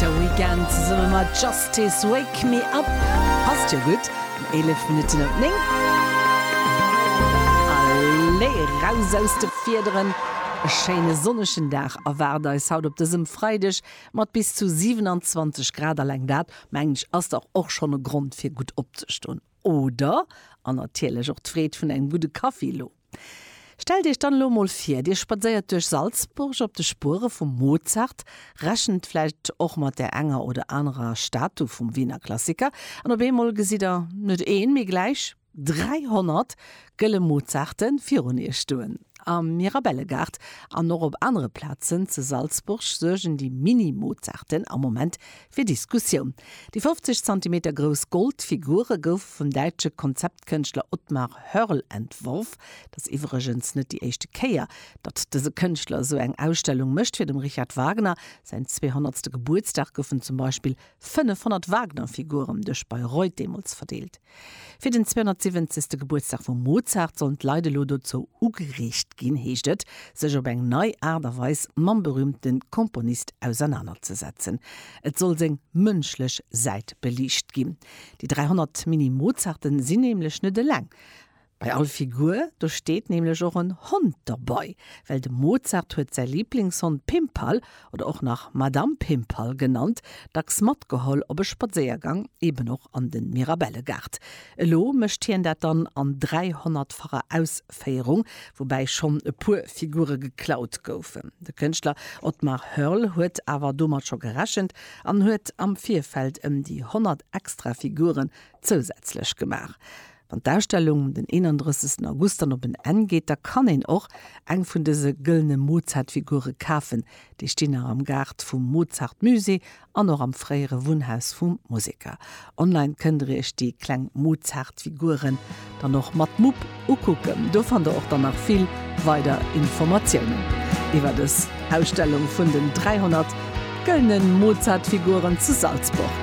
De Weekend zesumme mat Justice, Wake Me Up passt jo gutt um 11 Minutten op 9. Allez, raus aus de Fiederen! E schéine sonnegen Dag erwaart eis haut op dësem Freideg mat bis zu 27 Grad. Alleng dat, mengen ech, ass dach och schonn e Grond fir gutt opzeston. Oder, an natierlech och d'Freed vun engem gudde Kaffi elo. Stellt Iech dann elo emol vir, Dir spadséiert duerch Salzburg op de Spuere vum Mozart, rechent vläicht och mat där enger oder anerer Statu vum Wiener Klassiker, an op eemol gesitt Der net een, mee gläich 300 gëlle Mozarte virun Iech stoen. Am Mirabellegaart an och op anere Plazen ze Salzburg suergen déi Mini-Mozarten am Moment Fir Diskussioun. Déi 50 Zentimeter grouss Goldfigure goufe vum däitsche Konzeptkënschtler Otmar Hörl entworf. Et ass iwwregens net déi éischte Kéier, datt dëse Kënschtler esou eng Ausstellung mécht. Fir dem Richard Wagner säin 200. Gebuertsdag goufen zum Beispill 500 Wagner-Figuren duerch Bayreuth deemools verdeelt. Fir den 270. Gebuertsdag vum Mozart sollen d'Leit elo dozou ugereegt ginn, heescht et, sech op eng nei Aart a Weis mam berüümte Komponist ausernanerzesetzen. Et soll seng mënschlech Säit beliicht ginn. Déi 300 Mini-Mozarten sinn nämlech net eleng. Bei all Figur do steet nämlech och en Hond derbei, well de Mozart huet säi Lieblingshond Pimpal, oder och nach Madame Pimpal genannt, dacks matgeholl op e Spadséiergang, eben och an de Mirabellegaart. Elo mécht hien dat dann an 300-facher Ausféierung, woubäi schonn e puer Figure geklaut goufen. De Kënschtler Otmar Hörl huet awer domat scho gerechent an huet am Virfeld ëm déi 100 extra Figuren zousätzlech gemaach. Wann d'Ausstellung um den 31 August dann op en Enn geet, da kann een och eng vun dëse gëllene Mozart-Figure kafen. Déi stinn nach am Gaart vum Mozart-Musée an och am fréiere Wunnhaus vum Museker. Online kënnt der iech déi kleng Mozart-Figuren dann och mat Mupp ukucken. Do fannt der och dann nach vill weider Informatiounen iwwer dës Ausstellung vun den 300 gëllene Mozart-Figuren zu Salzburg.